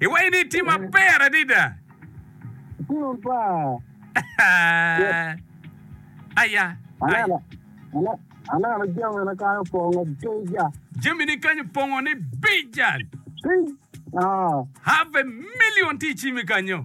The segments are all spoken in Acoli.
Iwaco ni itye maber adada. Aya. Jamini kany opongo ni bija. Have a million tye i cimi kanyo.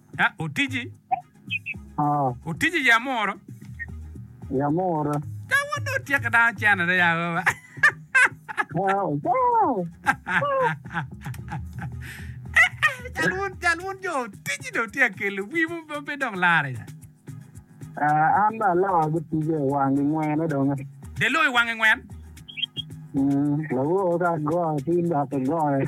Ah, otiji? Ah, Otiji ya moro? ya mora. Ka wun dong tyeke dano cene de ya baba. Ah, wow. Cal wun, cal wun jo otiji dong tye akelo wi mo pe- pe dong lare ya. Ah, an dong aloko ki tija i wang i ngwene dong. Delo i wange ngwen. Mm, lawor ka goyo tin dok igoyo.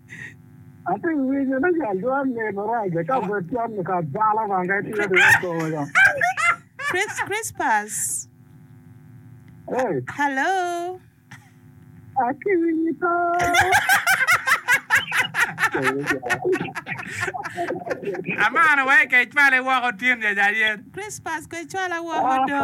Ati winyo ni jal dwar lim marac ka obed cam ni ka bala bang ka itiyo di wek kome ka. Chris Crispus. Hey, Hello. ati winyo to. Amano wa ikec pale woko tin ja ja yen. Crispus kwe cwala woko do.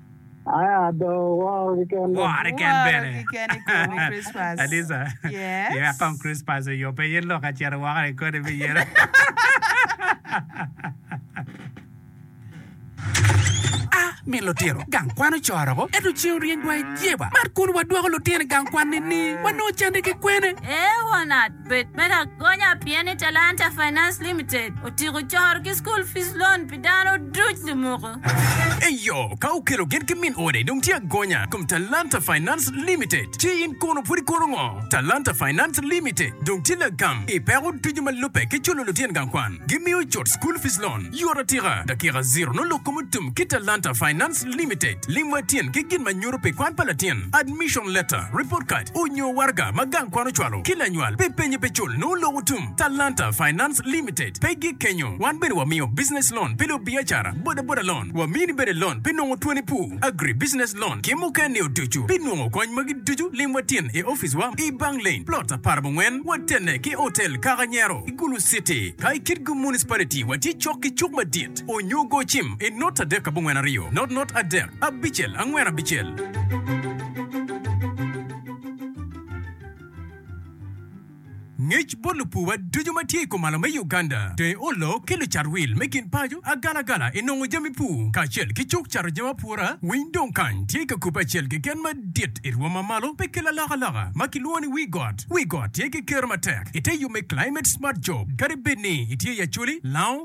Wore keken bene. Adisa. Yeah, kong Christmas oyo pe ye lok acito woko ni kodi me yelo. A Mi lutino gang kwan ocoro ko ento ceng oryeny dwai jeba. Mar kun wadwoko lutino i gang kwan ni ni wanongo cande ki kwene? Ee won at. Bed me lagonya pien ni Talanta Finance Limited otyeko coro ki School Fees Loan pi dano duc lumuku. Eyo, ka okelo gin ki min ode dong tye agonya kom Talanta Finance Limited. Ci in kono pud ikono ngo? Talanta Finance Limited dong tye lagam i peko ducu ma lubbe ki culo lutyen gang kwan. Gimiyo cut School Fees Loan yot atika, dakika ziro nongo lok kom otum ki Talanta Finance. Trust Limited, lim wa tin ki gin ma nyuto pi kwan pa latin, admission letter, report card, onyo waraga ma gang kwan ocwalo ki lanywal pi penye pe cul nongo loko tum. Talanta Finance Limited pe gik kenyo, wan bene wamiyo business loan pi lubiacara, boda boda loan, wamini bene loan pi nongo twoni pu, agri business loan ki mukene o ducu. Pi nongo kony magi ducu lim wa tin i office wa i Bang Lane, plot apar mungwen, watene ki Hotel Kaka Nyero, i Gulu City. Ka i Kitgum Municipality watye cok ki cuk madit. Onyo go cim i not adek abongwen aryo, not not adek abicel angwen abicel. Ngec bot lupuwa ducu ma tye i komalo me Uganda dong oloo ki lucat wil me kin paco agala agala i nongo jami pur kacel ki cuk cato jami apura winy dong kany tye ka kubbe acel keken madit i rwom ma malo pe kel alaka laka ma ki lwongo ni wii got. Wii got tye ki kero matek i te yub me climate smart job kadi bed ni itye i Acholi, Lango,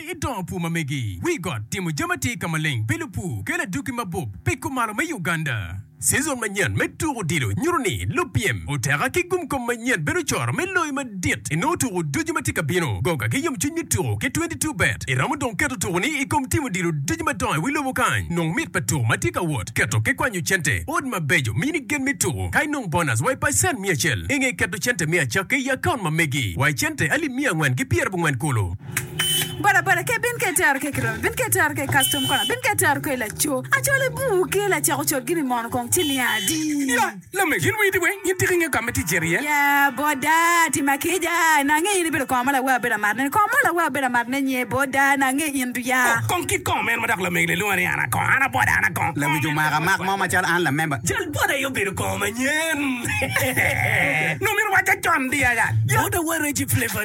I dongo pur ma megi, wi got, timo jami atir ka maleng, bilo pur, kelo adwogi mabup, piko malo me Uganda. Season manyen me tuko odilo nyuto ni lupyem oteka ki gumkom manyen bedo coro me loyo madit inongo tuko ducu ma tye ka bino. Go ka ki yomcwiny me tuko ki twenty two bet. Iromo dong keto tukoni i kom timo odilo ducu madongo i wi lobo kany. Nong mit pa tuko ma tye ka wot, keto ki kwanyo cente, odi mabeco, mini gen me tuko, ka inong bonus wa i pacen miya acel. Inge keto cente me acakke i akaunt ma megi wa i cente alip miya angwen ki pyera bongwen kulu. Bodaboda ke bin ke tero ke kiromi bin ke tero ke custom kona bin ke tero ke laco acol i bur ke lacek ocol gini mono kong cili adi. Ya lamege in winy tye weng in tika ingeyo kama tic cito iye. Ya boda tima kica na ange in ibedo kongo ma lawa abedo amat ne kongo mo lawa abedo amat ne nye boda na ange in du ya. Oh kong kit kongo meno ma dok lamege le lwonga ni an akongo an aboda an akongo kongo Lamege omaka mak mo macalo an lamemba. Cal boda aye obedo kongo manyen. Nongo myero owaca con di aya. Boda wa Reggie Flavour.